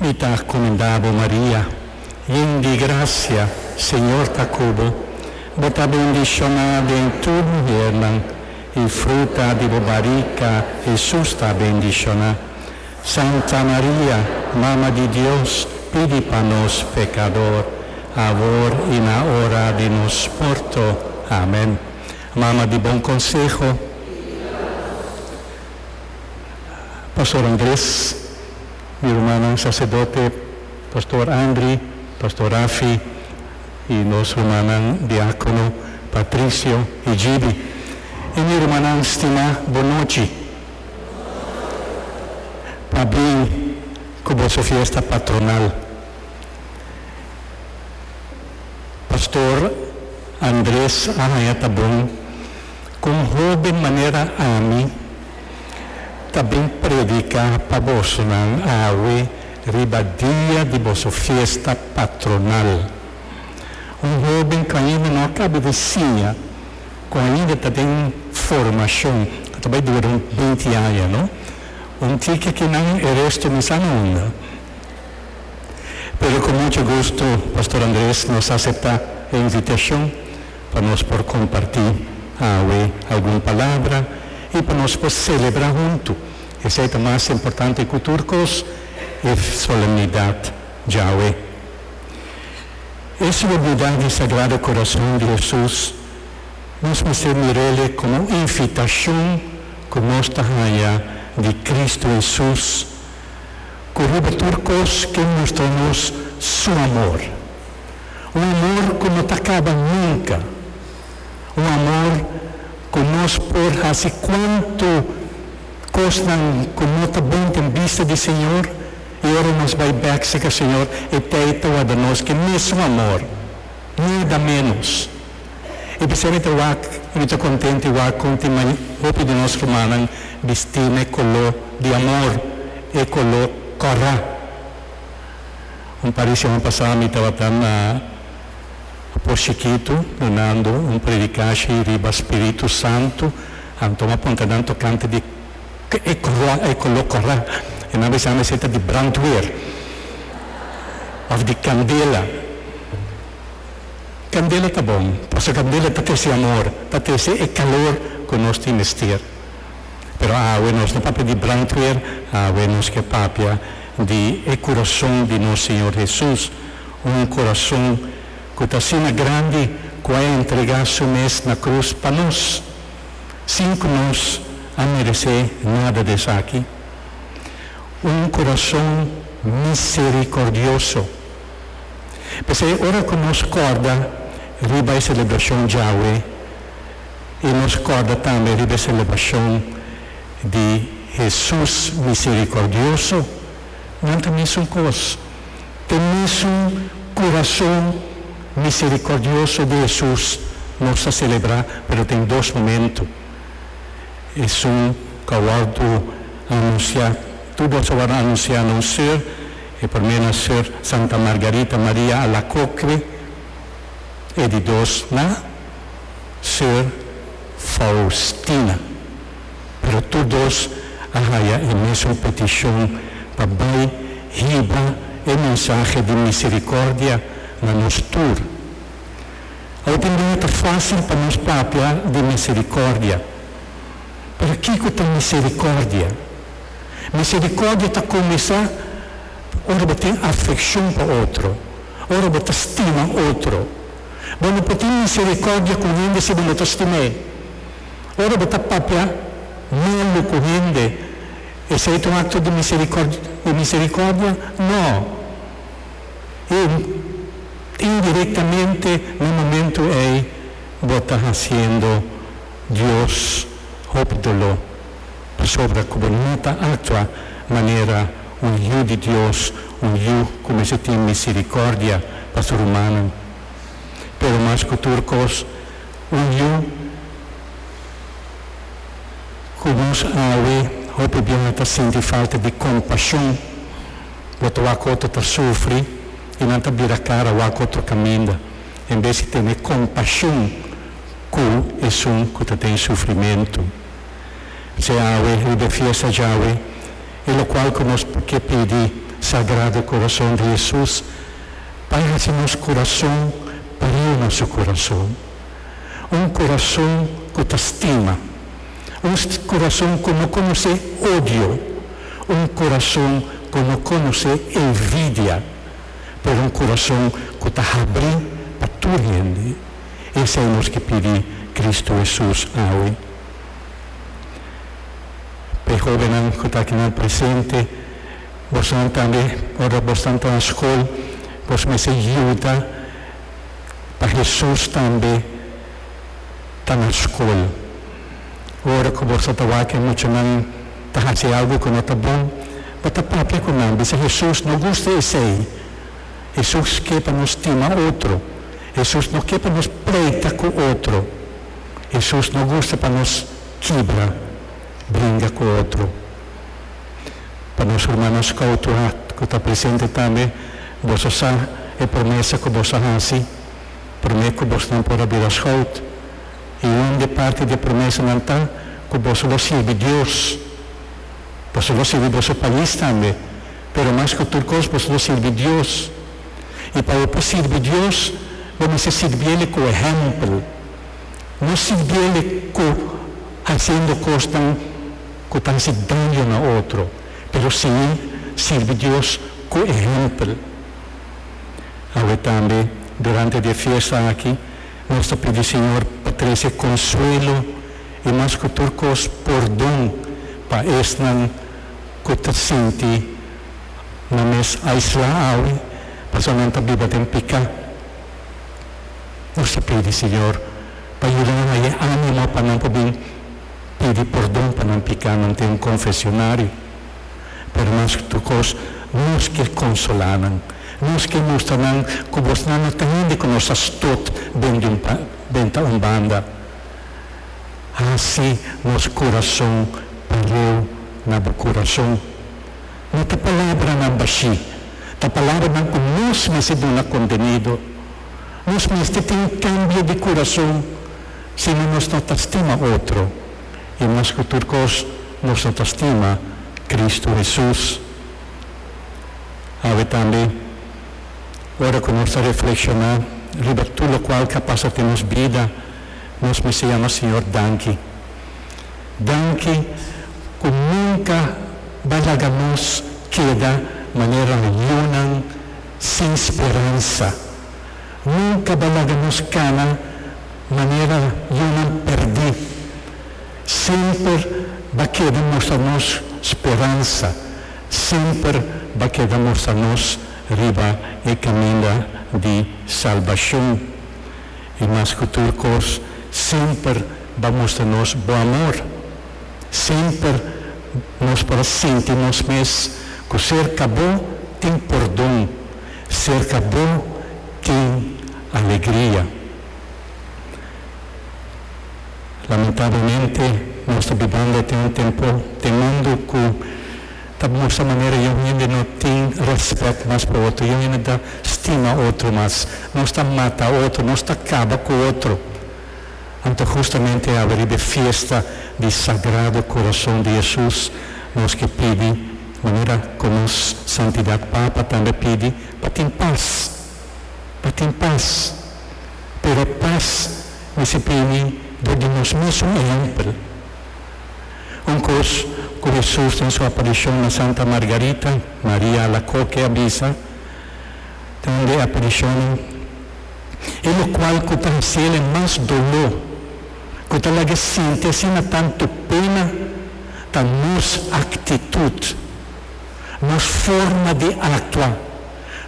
Mi ta comenda bo Maria, yen di gracia, Señor ta cu bo, bo ta bendiciona den tur muhernan, y fruta di bo barica, Jesús ta bendiciona. Santa Maria, Mama di Dios, pidi pa nos pecador, awor y na ora di nos morto. Amen. Mama di bon conseho. Pastor Andres, mi rumannan sacerdote, Pastor Andry, Pastor Rafi y nos rumannan diacono Patricio y Jibi. Y mi rumannan stima, bo nochi. Pabien cu boso fiesta patronal. Pastor Andres a haya ta bon. Con hopi manera ami ta bin predica pa bosonan awe riba dia di boso fiesta patronal. Un hoben cu ainda no a caba di siña, cu ainda ta den formacion, cu ta bay dura un binti aña, no? Un tiki ki nan e resto mi sa na unda. Pero cu mucho gusto, Pastor Andres nos a acepta e invitacion. pa nos por kompartí awe algun palabra i pa nos por selebrá huntu. Esei ta mas importante ku tur kos, e solemnidat djawe. E solemnidat di Sagrado Korason di Hesus nos mester mir'el e komo un invitashon ku nos ta haña di Kristu Hesus, ku riba tur kos ke mustra nos su amor. Un amor ku no ta kaba nunka. Un amor ku nos por hasi kuantu kosnan ku no ta bon den bista di Señor, i ora nos bai bèk serka Señor, e tei ta wòrdu nos ke mesun amor, nada ménos. I p'esei mi ta wak i mi ta kontent i wak kon tin mai hopi di nos rumannan bistí na e koló di amor, e koló kòrá. Un par di semana pasá mi tabata na Por Chikitu dunando un predikashi riba Spiritu Santu. Anto mi a punta nan tokante di ke e kura, e koló kura. E nan a bisa mi si ta di brandweer òf di kandela. Kandela ta bon pasobra kandela ta trese amor, ta trese e kalor ku nos tin mester. Pero awe nos no papia di brandweer, awe nos ke papia di e kurason di nos Señor Hesus, un kurason ku ta asina grandi ku a entregá su mes na krus pa nos, sin ku nos a meresé nada di esaki. Un kurason miserikordioso. P'esei ora ku nos kòrda riba e selebrashon djawe i nos kòrda tambe riba e selebrashon di Hesus miserikòrdioso, nan ta mesun kos. Te mesun kurason miserikòrdioso di Hesus nos ta selebrá, pero tin dos momentu. Esun kawòrdu anunsiá, tur boso a wòrdu anunsiá na un sur, e promé na sur Santa Margarita Maria Alacoque, e di dos na. Sir Faustina, pero tur dos a haya e mesun petishon pa bai hiba e mensahe di misericordia na nos tur. Autindía ta fácil pa nos papia di misericordia, pero kico ta misericordia? Misericordia ta cuminsa ora bo tin afeccion pa otro, ora bo ta stima otro. Bo no por tin misericordia cu hende si bo no ta stim'é. Ora bo ta papia malu cu hende, esei ta un acto di di misericordia? No. I indirectamente na momento ei bo ta haciendo Dios hopi dolor. Pasobra ku bo no ta aktua manera un yu di Dios, un yu ku mester tin miserikòrdia pa su rumannan, pero mas ku tur kos, un yu ku nos awe hopi biaha ta sinti falta di kompashon. Bo ta wak otro ta sufri i nan ta bira kara wak otro kaminda, en bes di tene kompashon ku esun ku ta den sufrimentu. Djawe, riba e fiesta djawe, e lokual ku nos por ke pidi Sagrado Kurason di Hesus pa e hasi nos kurason pariu na su kurason. Un kurason ku ta stima. Un kurason ku no konosé odio. Un kurason ku no konosé envidia. Pero un kurason ku ta habrí pa tur hende. Esei nos ke pidi Kristu Hesus awe. P'e hobennan ku ta akinan presente, bosnan tambe ora bosnan ta na skol, bos mester yuda pa Hesus tambe ta na skol. Ora ku bos ta tabaha ku e muchanan ta hasi algu ku no ta bon, bo ta papia ku nan, bisa, Hesus no gusta esei. Hesus ke pa nos stima otro. Hesus no ke pa nos pleita ku otro. Hesus no gusta pa nos kibra bringa ku otro. Pa nos rumannan skou tu hart ku ta presente tambe, boso sa e promesa ku boso a hasi promé ku bosnan por a bira skout, i un di parti di e promesanan ta ku boso lo sirbi Dios. Boso lo sirbi boso pais tambe, pero mas ku tur kos boso lo sirbi Dios. I pa e por sirbi Dios, bo mester sirbi el ku ehèmpel, no sirbi el ku hasiendo kosnan ku ta hasi daño na otro, pero si sirbi Dios ku ehèmpel. Awe tambe durante di e fiesta aki nos ta pidi Señor pa trese konsuelo i mas ku tur kos pordon pa esnan ku ta sinti. Nan mes aislá awe pasobra nan ta biba den piká. Nos a pidi Señor pa yuda nan haña ánimo pa nan por bin pidi pordon pa nan piká. Nan tin un konfesionario, pero mas ku tur kos nos ke konsolá nan. Nos ke mustra nan ku bosnan no ta hende ku nos a stot den di un benta un banda. Hasi nos kurason pareu na bo kurason. No ta palabranan bashí, ta palabranan ku nos mester duna kontenido. Nos mester tin un kambio di kurason si no nos ta ta stima otro, i mas ku tur kos nos ta ta stima Kristu Hesus. Awe tambe, ora ku nos ta reflekshoná riba tur lokual ke a pasa den nos bida, nos mester yama Señor danki. Danki ku nunka ba laga nos keda manera lionnan sin speransa. Nunka ba laga nos kana manera lionnan perdí. Semper ba keda mostra nos speransa, semper ba keda mostra nos riba e kaminda di salbashon. I mas ku tur kos, semper bo a mustra nos bo amor. Semper nos por a sinti nos mes ku serka bo tin pordon, serka bo tin alegria. Lamentablemente, nos ta bibando den un tempu den mundu ku. Ta mustra manera yon hende no tin respet mas pa otro, yon hende ta stima otro mas. Nos ta mata otro, nos ta kaba ku otro. Anto hustamente aba riba e fiesta di Sagrado Corazon di Hesus nos ke pidi, manera ku nos Santidat Papa tambe a pidi, pa tin pas, pa tin pas. Pero e pas mester bini dor di nos mes un ehèmpel. Un kos ku Hesus den su aparishon na Santa Margarita, Maria Alacoque, a bisa den un di e aparishonnan, E lokual ku ta hasiel mas doló, ku ta laga sinti asina tantu pena, ta nos aktitut, nos forma di aktua,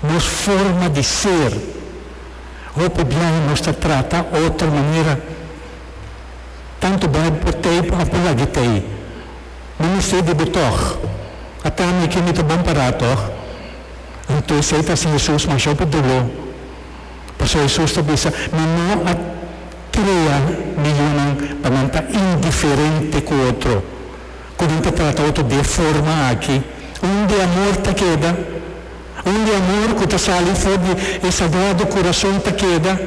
nos forma di ser. Hopi biaha nos ta trata otro manera. Tantu bai por tei pa apu lagi tei. Mi mester di bo tòg. A ta mi ke mi ta bon pa ra tòg? Anto esei ta hasi Hesus mashau por doló. Pasobra Hesus ta bisa, Mi no a krea mi yunan pa nan ta indiferente ku otro, ku nan ta trata otro di e forma aki. Un di amor ta keda. Un di amor ku ta sali for di e sagrado kurason ta keda.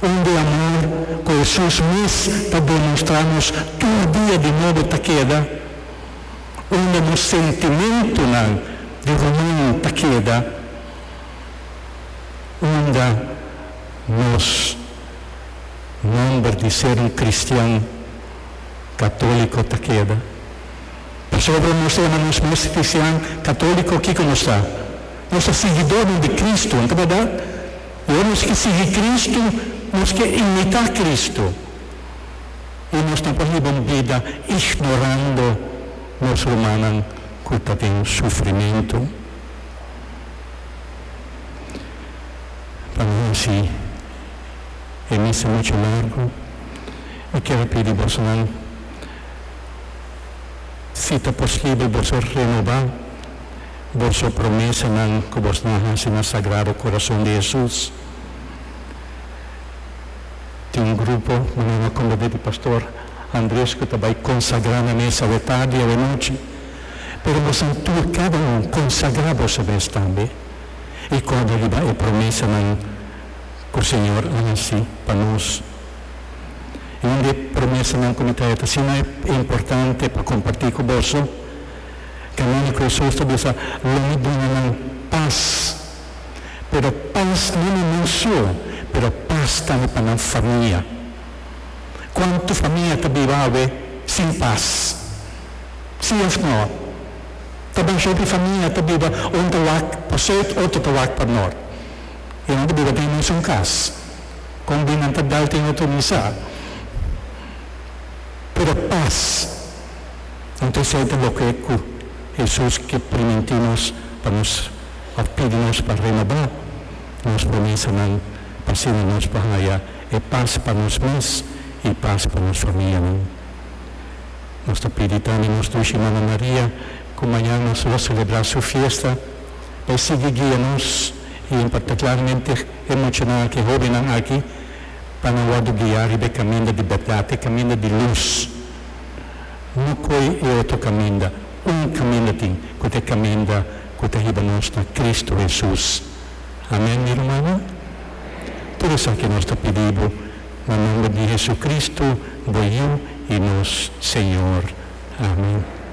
Un di amor cu Hesus mes ta demonstra nos tur dia di nobo ta keda unda nos sentimentonan di ruman ta keda unda nos nomber di ser un cristian catolico ta keda. Pasobra nos ta yama nos mes cristian catolico kico nos ta? Nos ta siguidornan di Cristo, no ta bardad? Ora nos ke sigui Kristu, nos ke imitá Kristu. I nos no por hiba un bida ignorando nos rumannan ku ta den sufrimentu. Pa no hasi e misa muchu largu, mi ker a pidi bosnan, si ta posibel boso renobá. boso promesanan ku bos na hasi na Sagrado Korason di Hesus. Tin un grupo, manan a konberdí di Pastor Andres, ku ta bai konsagrá na mes awe tardi, awe nochi. Pero bosan tur, kada un, konsagrá bos e mes tambe i kòrda riba e promesanan ku Señor a hasi pa nos. I un di e promesanan ku mi ta heta asina importante pa kompartí ku boso. Camino cu Hesus ta bisa, Lo mi bringa nan paz, pero paz no na nan su, pero paz tambe pa nan famia. Cuanto famia ta biba awe sin paz? Si of no? Ta bay hende famia ta biba un ta wak pa sud otro ta wak pa nort y nan ta biba den mesun cas, con bin nan ta bel den otro misa, pero paz Anto esei ta loke ku Hesus ke primintí nos pa nos òf pidi nos pa renobá nos promesanan pa asina nos por haya e pas pa nos mes i pas pa nos famianan. Nos ta pidi tambe nos Dushi Mama Maria ku mañan nos lo selebrá su fiesta pa e sigui guia nos i e impakta klaramente e muchanan aki, e hóbennan aki pa nan wòrdu guiá riba e kaminda di bèrdat, e kaminda di lus. no koe e otro kaminda, un kaminda tin, ku ta e kaminda ku ta hiba nos na Kristu Hesus. Amen, mi rumannan? Tur esaki nos ta pidi bo, na nomber di Hesukristu, bo Yu i nos Señor. Amen.